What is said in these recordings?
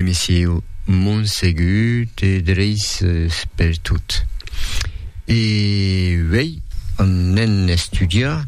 Messieu Montsegut e dreis per tot. E uei anem estudiar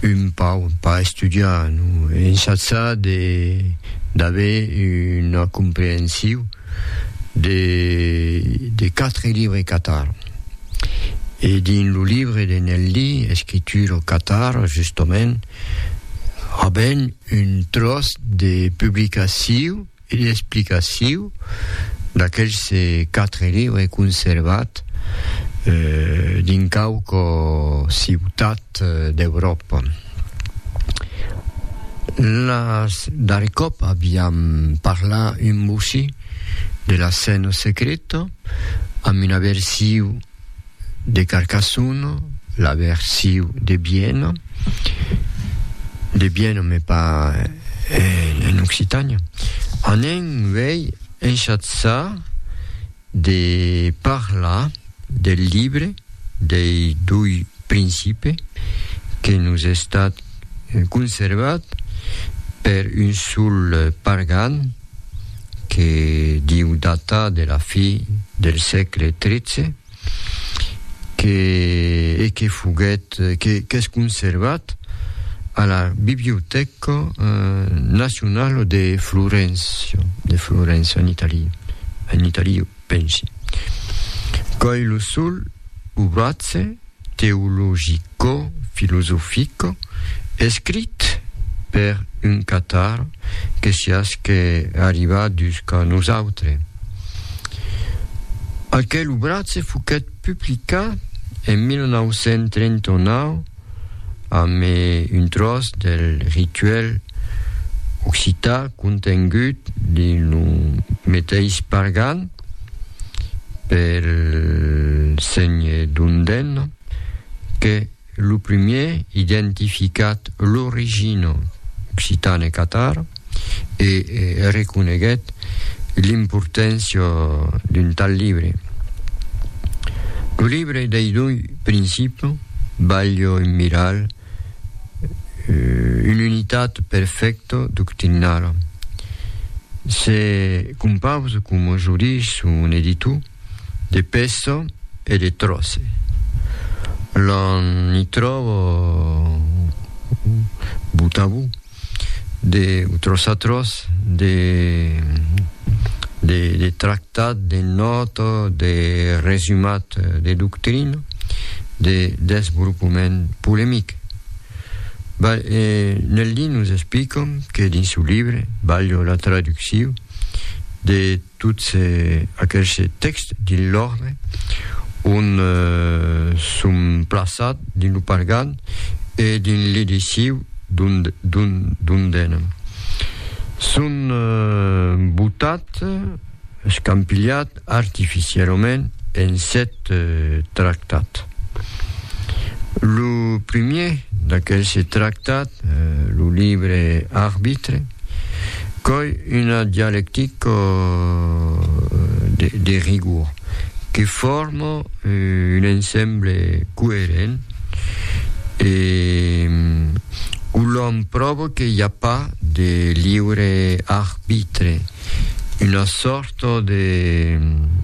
un pau, pas estudiar, non, ensajar de d'aver una comprehensiu de de quatre libres catar. E dins lo livre de Nelly, Escriture au Catar, justament, Avèm un tròç de publicaciu e d'explicaciu d'aqueles quatre liures conservats dins quauqua ciutat d'Euròpa. Las darrèr còp aviam parlat un mossí de la Scène Secrèta amb una versiu de Carcassonne, la versiu de Bienne, de Bienne me pas en, en Occitània, anem uèi enchatzar de parlar del libre dei doi principe que nos estat conservat per un sol pargan, que diu datar de la fi del sègle tretze, que e que foguèt que qu'es conservat a la Bibliotèca Nacionala de Florença, de Florença en Itali, en Itali pensi. Còi lo sol, o bratze, teologicofilosofic escrit per un catar que siás que arriba jusqu'a nosautre. Aquel obratge foquèt publicat en 1939 amb un tròç del rituèl occitan contengut dins lo meteis Pargan, pel sénhe Dundèn que lo primièr identificat l'origina occitana e catar e reconeguèt l'importància d'un tal libre. Lo libre dei doi principis balha un miral un'unitat perfècta doctrinala. Se compausa, coma jo dich son editor, de pèça e de tròce. L'an i tròba botavò. de utros atros de de de tractat de nòta de resumat de doctrina de desvolopament polemic Ba e Nel li nos explica que dins su libre balho la traducciu de Tots aquelhs tèxts dins l'òrdre ont son plaçats dins lo pargan e dins l'ediciu dondena son botats, escampilhats artificialament en sèt tractats. Lo primièr d'aquelhs tractats, lo libre arbitre, Coi una dialectica de rigor que forma un ensemble coerent e o l'òm pròva que i a pas de liure arbitre, una sòrt Fòto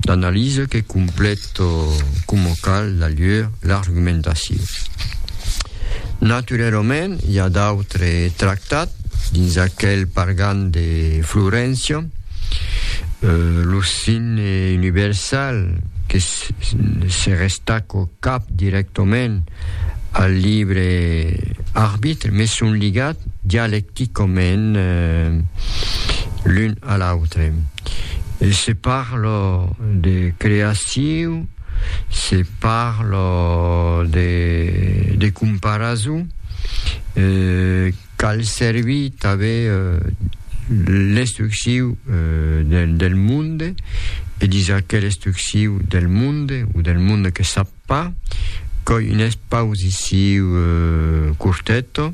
d'analisa que complèta coma cal la lhur l'argumentacion. Naturerament, i a d'autres tractats dins aquel pargan de Floréncia, lo signe universal que se restaca cap dirèctament al libre arbitre, mes son ligat dialecticament Quicòment l'un a l'autre. Se parla de creaciu, se parla de comparason, cal servir tanben l'estrucciu del monde e disar qu'es l'estrucciu del monde o del monde que sap. Pas qu'oi un espausiciu curteto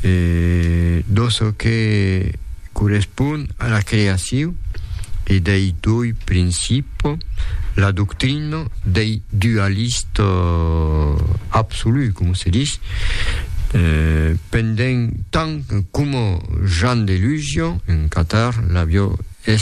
e do çò que correspon a la creaciu e dei doi principo, la doctrina dei dualist absolu, coma se dis, pendent tant coma Jean Delusion, en Catar, l'avió es